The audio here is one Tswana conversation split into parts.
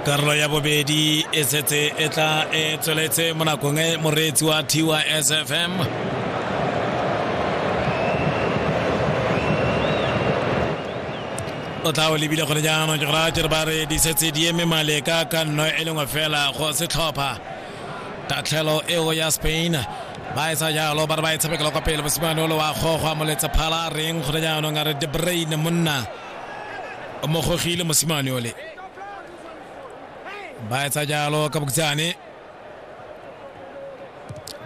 karolo ya bobedi e setse e tla e tsweletse mo nakong e moreetsi wa tysfm o tla o lebile gone jaanong ke go raya kere ba re di setse di eme maleka ka nno e lengwe fela go setlhopha tatlhelo eo ya spain ba e sa jalo ba re ba e tshamekela kwa pele mosimane o le wa gogwa moletse phala reng gone jaanong a re de brain monna o mogogile mosimane ole ba etsa jalo ka bokutsane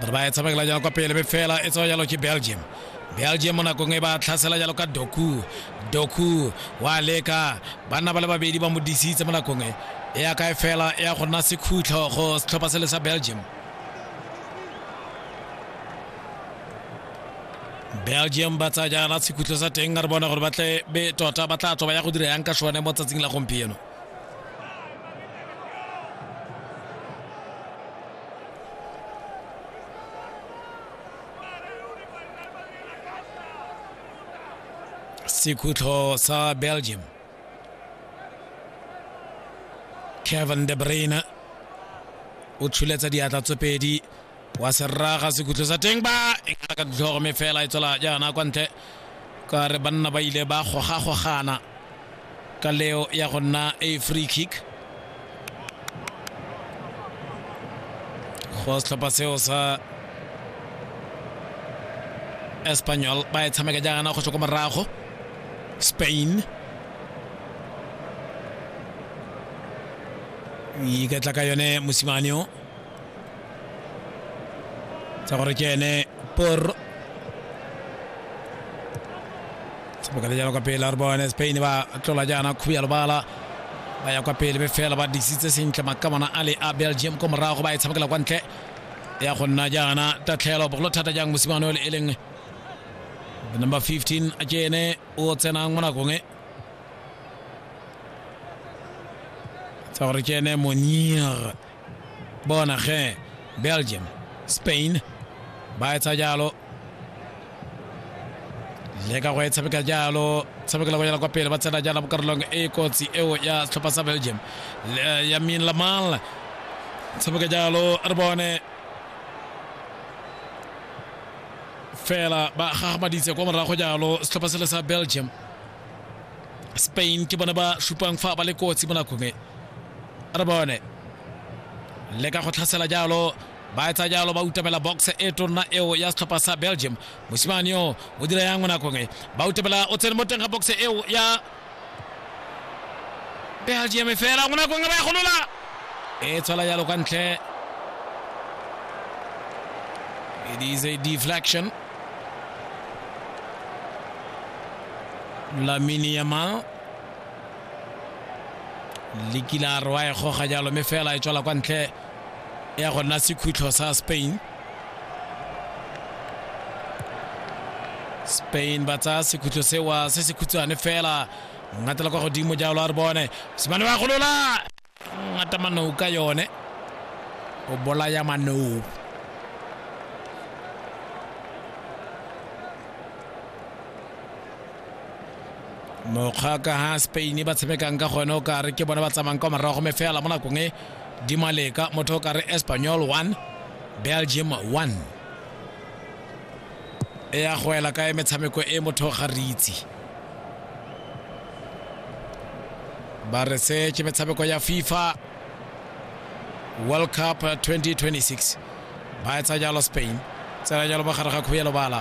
ba ba e tshamekela jalo kwa pele be fela e tsewa jalo ke belgium belgium mo nakong e ba tlhasela jalo ka doku doku wa leka banna ba le babedi ba mo disitse mo nakong e e ya kae fela e ya go nna sekhutlho go setlhopha sele sa belgium belgium ba tsaya jaana sekhutlho sa teng a re bona gore ba tle be tota ba tla tswa ba ya go dira yang ka sone mo tsatsing la gompieno sekhutlo sa belgium kevin de bruyne o tshuletsa diatla tse pedi wa serraga sekhutlho sa teng ba e ka ka ditlhogo me fela e tswela jaana kwa ntle ka re banna ba ile ba gogagogana ka leo ya go nna a free kick go setlhopha seo sa espanyol ba e tshameka jaana go tswa ko morago spain iketla ka yone mosimane o tsa gore ke ene por sebokale jalo kwa pele a re bone spain ba tlola jaana khubi ya lobala ba ya kwa pele be fela ba disitse sentle makamana a le a belgium ko morago ba e tshamekela kwa ntle ya go nna jaana tatlhelo bogolo thata jang mosimane o le e leng the number 15 a ke ene o tsenang mo nakong e tsa gore ke ene monier bona ge belgium spain ba etsa jalo le ka go e tshameka jalo tshamekela go yela kwa pele ba tsena jana mo karolong e kotsi eo ya setlhopha sa belgium ya min lamal tshameka jalo re bone fela ba gagamaditse kwa morago jalo setlhopha sele sa belgium spain ke bone ba supang fa ba le kotsi mo nakong e re bone le ka go tlhasela jalo ba etsa jalo ba utamela box e tonna eo ya setlhopha sa belgium mosimane yo o dira yang mo nakong e ba utamela o tsene mo teng ga box eo ya belgium fela mo nakong e ba e golola e tswela jalo kwa ntle it is a deflection lamini yamal lekilare wa e goga jalo mme fela e tswela kwa ntle ya go nna sekhutlho sa spain spain ba tsaya sekhutlho sewa se se khutshwane fela ngatela kwa godimo jalo a re bone semane wa golola ngata manou ka yone go bolaya manou mokgwa ka ha spain ba tshamekang ka gone o kare ke bone ba tsamayng kwa morago me fela mo nakong e di maleka motho o kare espanyol 1 belgium 1 e ya go ela kae metshameko e motho ga re itse ba re se ke metshameko ya fifa world cup 2026 ba etsa jalo spain tsela jalo mogare ga kgobelo bala